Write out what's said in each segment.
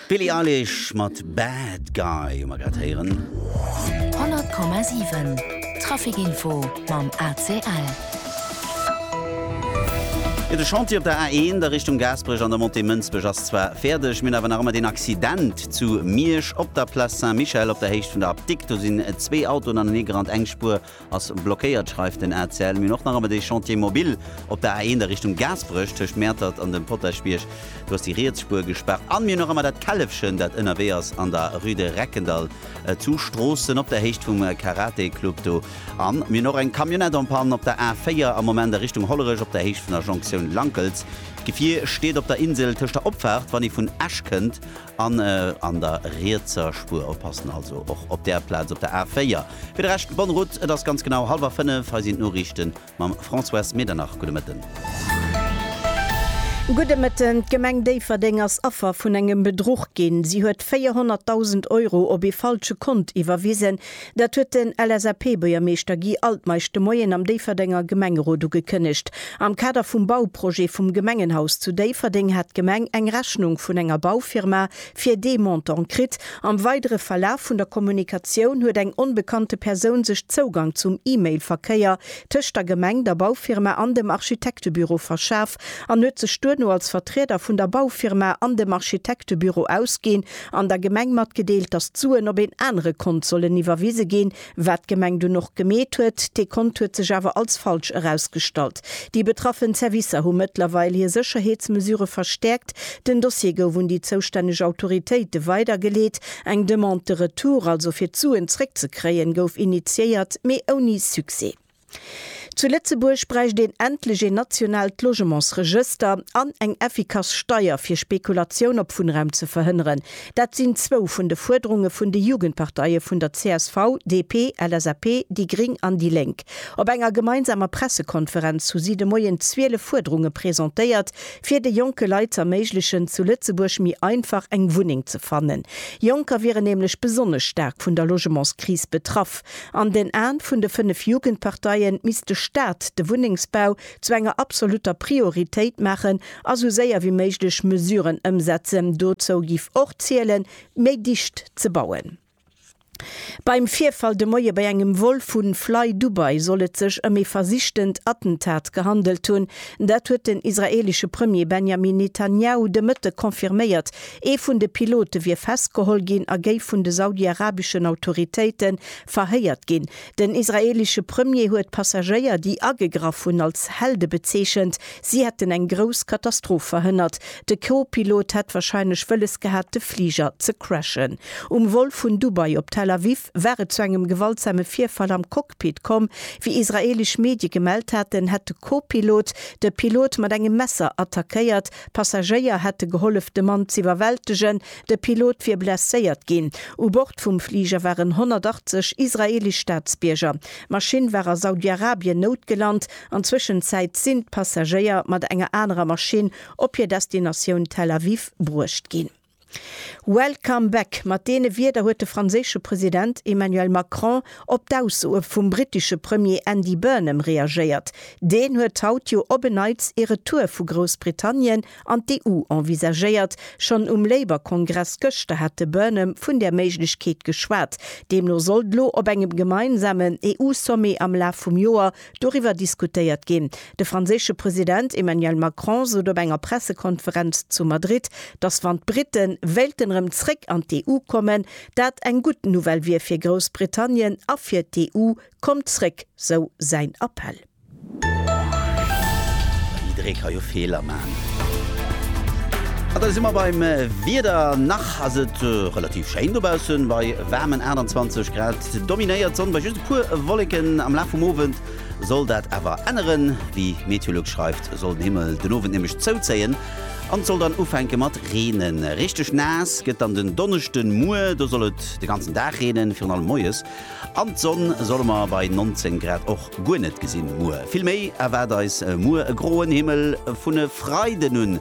D'Billie Eilish mat Bad Guy hu mer grad héieren. 100,7 Trafic Info mam ACL. Jo, de Chantier op der A1 a Richtung Gaasperech an der Montée Mënsbech ass zwar fäerdeg, mir hunn awer nach ëmmer deen Accident. Zu Miersch op der Place Saint-Michel op der Héicht vun der Apdikt, do sinn zwee Autoen aneneegerannt, eng Spuer ass blockéiert, schreift den ACL. Mir hunn och nach ëmmer dee Chantier mobile op der A1 a Richtung Gaasperech, tëscht Mäertert an dem Potaschbierg, do ass déi riets Spuer gespaart. An mir hunn nach ëmmer dat Källefchen, dat ënnerwee ass an der Rue de Reckendall zu Stroossen op der Héicht vum Karate-Club do. An mir hunn och eng Camionnette en panne op der A4 am Moment a Richtung Hollerech op der Héicht vun der Jonktioun Lankels. D'Gefier steet op der Insel tëscht der Opfaart, wann ee vun Esch kënnt, an an der rietser Spuer oppassen, also och op där Plaz op der A4. Fir de Rescht, bonne route, et ass ganz genau hallwer 5, hei sinn d'Noriichte mam Françoise Medernach. Gudde Mëtten. Gudde Mëtten. D'Gemeng Déifferdeng ass Affer vun engem Bedruch ginn. Si huet 400.000 Euro op ee falsche Kont iwwerwisen. Dat huet den LSAP-Buergermeeschter Guy Altmeisch de Moien am Déifferdenger Gemengerot ugekënnegt. Am Kader vum Bauprojet vum Gemengenhaus zu Déifferdeng hat d'Gemeng eng Rechnung vun enger Baufirma fir dee Montant kritt. Am weidere Verlaf vun der Kommunikatioun huet eng onbekannte Persoun sech Zougang zum E-Mail-Verkéier tëscht der Gemeng, der Baufirma an dem Architektebüro verschaf an huet sech duerno als Vertrieder vun der Baufirma an dem Architektebüro ausginn an der Gemeng matgedeelt, datt d'Suen op een anere Kont sollen iwwerwise ginn, wat d'Gemeng dunn och gemeet huet. Dee Kont huet sech awer als falsch erausgestallt. Déi betraffen Zerwisser hu mëttlerweil hir Sécherheetsmesure verstäerkt. Den Dossier gouf un déi zoustänneg Autoritéite weidergeleet. Eng Demande de retour, also fir d'Suen zréckzekréien, gouf initiéiert, mee ouni Succès. Zu Lëtzebuerg bräicht een endlech een nationaalt Logementsregëster an eng effikass Steier fir Spekulatioun op Wunnraum ze verhënneren. Dat sinn zwou vun de Fuerderunge vun de Jugendparteie vun der csv, DP, LSAP, déi gring an déi lénk. Op enger gemeinsamer Pressekonferenz hu si de Moien 12 Fuerderunge presentéiert, fir de jonke Leit z'erméiglechen, zu Lëtzebuerg méi einfach eng Wunneng ze fannen. Jonker wieren nämlech besonnesch staark vun der Logementskris betraff. An den Aen vun de fënnef Jugendparteien misst de Staat de Wunnengsbau zu enger absoluter Prioritéit maachen a sou séier wéi méiglech Mesuren ëmsetzen. Dozou giff och zielen, méi dicht ze bauen. Beim Virfall de Moie bei engem Vol vu Fly Dubai soll et sech ëm ee versichtent Attentat gehandelt hunn. Dat huet den israeelesche Premier Benjamin Netanjahu de Mëtte confirméiert, Ee vun de Pilote wier festgeholl ginn a géif vun de saudiarabeschen Autoritéite verhéiert ginn. Den israeelesche Premier huet d'Passagéier, déi agegraff hunn, als Helde bezeechent. Si hätten eng grouss Katastroph verhënnert. De Co-Pilot hätt warscheinlech wëlles gehat, de Fliger ze crashen. Um Vol vun Dubai op Tel Aviv war et zu engem gewaltsame Virfall am Cockpit komm. Wéi israeelesch Medie gemellt haten, hätt de Co-Pilot de Pilot mat engem Messer attackéiert D'Passagéier hätte gehollef de Mann z'iwwerwältegen, de Pilot wier blesséiert ginn. U Bord vum Fliger waren 180 israeelesch Staatsbierger. D'Maschinn war a Saudi-Arabien noutgelant. An Zwëschenzäit sinn d'Passagéier mat enger anerer Maschinn op hir Destinatioun Tel Aviv bruecht ginn. Welcome back, mat deene Wierder huet de franséische President Emmanuel Macron op d'Aussoe vum brittesche Premier Andy Burnham reagéiert. Deen huet haut jo op en Neits ee Retour vu Groussbritannien an d'EU envisagéiert. Schonn um Labour-Kongress gëschter hat de Burnham vun där Méiglechkeet geschwat. Deemno sollt elo op engem gemeinsamen EU-Sommet am Laf vum Joer Doriwwer diskutéiert ginn. De franséische President Emmanuel Macron sot op enger Pressekonferenz zu Madrid, datt wann d'Brite wéilten erëm zréck an d'EU kommen, dat eng gutt Nouvelle wier fir Groussbritannien a fir d'EU. Kommt zréck, sou säin Appell. Jidderee ka jo Feeler man. A da si mer beim Wieder. Nach ass et relativ schéin dobaussen, bei waarmen 28 Grad. Dominéiert d'Sonn bei just e puer Wolleken. Am Laf vum Owend soll dat awer änneren. Wéi Meteolux schreift, soll den Himmel den Owend nämlech zouzéien an et soll dann ufänke mat reenen. Richteg naass gëtt dann den Donneschde muer. Do soll et de ganzen Dag reenen, virun allem moies. An d'Sonn solle mer bei 19 Grad och guer net gesinn muer. Vill méi erwaart eis muer e groen Himmel. Vun e Freiden un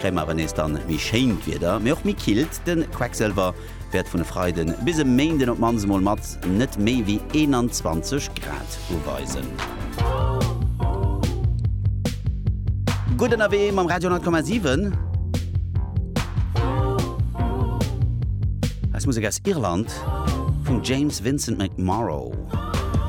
kréie mer awer nees dann méi schéint Wieder, mee och méi killt. De Quecksëlwer wäert vun e Freiden bis e Méinden op d'mannst emol mat net méi wéi 21 Grad uweisen. Gutt ënnerwee mam Radio 10,7. Eis Musek aus Irland vum James Vincent McMorrow.